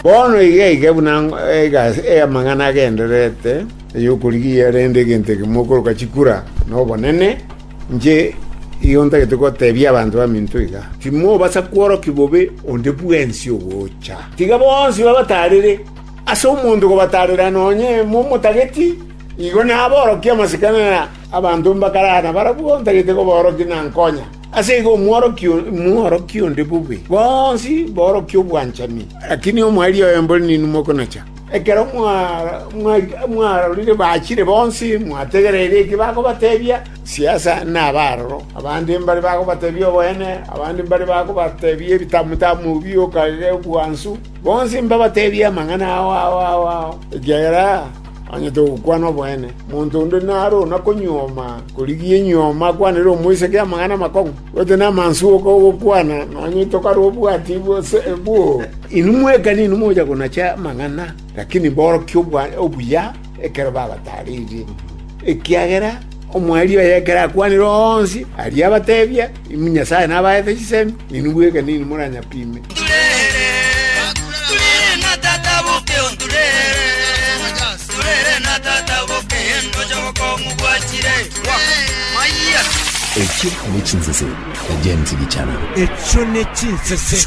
Bono iga iga buna amang'ana agendererete ay'okorigia, rende egento ekemo okoroka chikura nobonene, inche igo ntagete gotebia abanto baminto iga, Timobasa kworokia bobe onde bwensi ogocha. Tiga bonsi babataarere, ase omonto kobataarera nonya emo omotageti, igo naborokie amasikani aya abanto mbakarara nabarabwo ntagete koborokia na nkonya. Ase igo omworokia mworokie onde bobe, bonsi borokie obwanchani. Lakini omoerio oye mbori ninwe mokonacha. Ekero mwarorire bachire bonsi, mwategereire eki bakobatebia, siasa nabe aroro. Abande mbare bakobatebia oboene, abande mbare bakobatebia ebitamutamu bi okagega, ebwansu. Bonsi mbabatebie amang'ana ao ao ao ao, ekiagera Onye togokwana oboene, monto onde naro ona konyuoma korigia enyuoma akwanere omoiseke amang'ana amakong'u, gose namansu oka ogokwana, nonye tokare obwati gose boo? Inwe mwekani inwe mocha konacha amang'ana, lakini mborokia obuya ekero babataririe. Ekiagera omwari oye ekero akwanire onsi aria abatebia, Inwe Nyasae nabaete chisemi, ninwe bweka ninwe moranyapime. Echio ne chinsese, na James Gichana. Echio ne chinsese.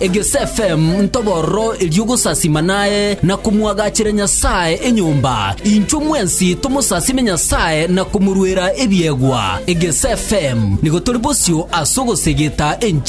Egesfm ntobororo erio gosasima naye na komwagachera Nyasae enyomba, inchwe mwensi tomosasime Nyasae na komorwera ebiegwa. Egesfm nigo tori bosio ase ogosegeta enchili.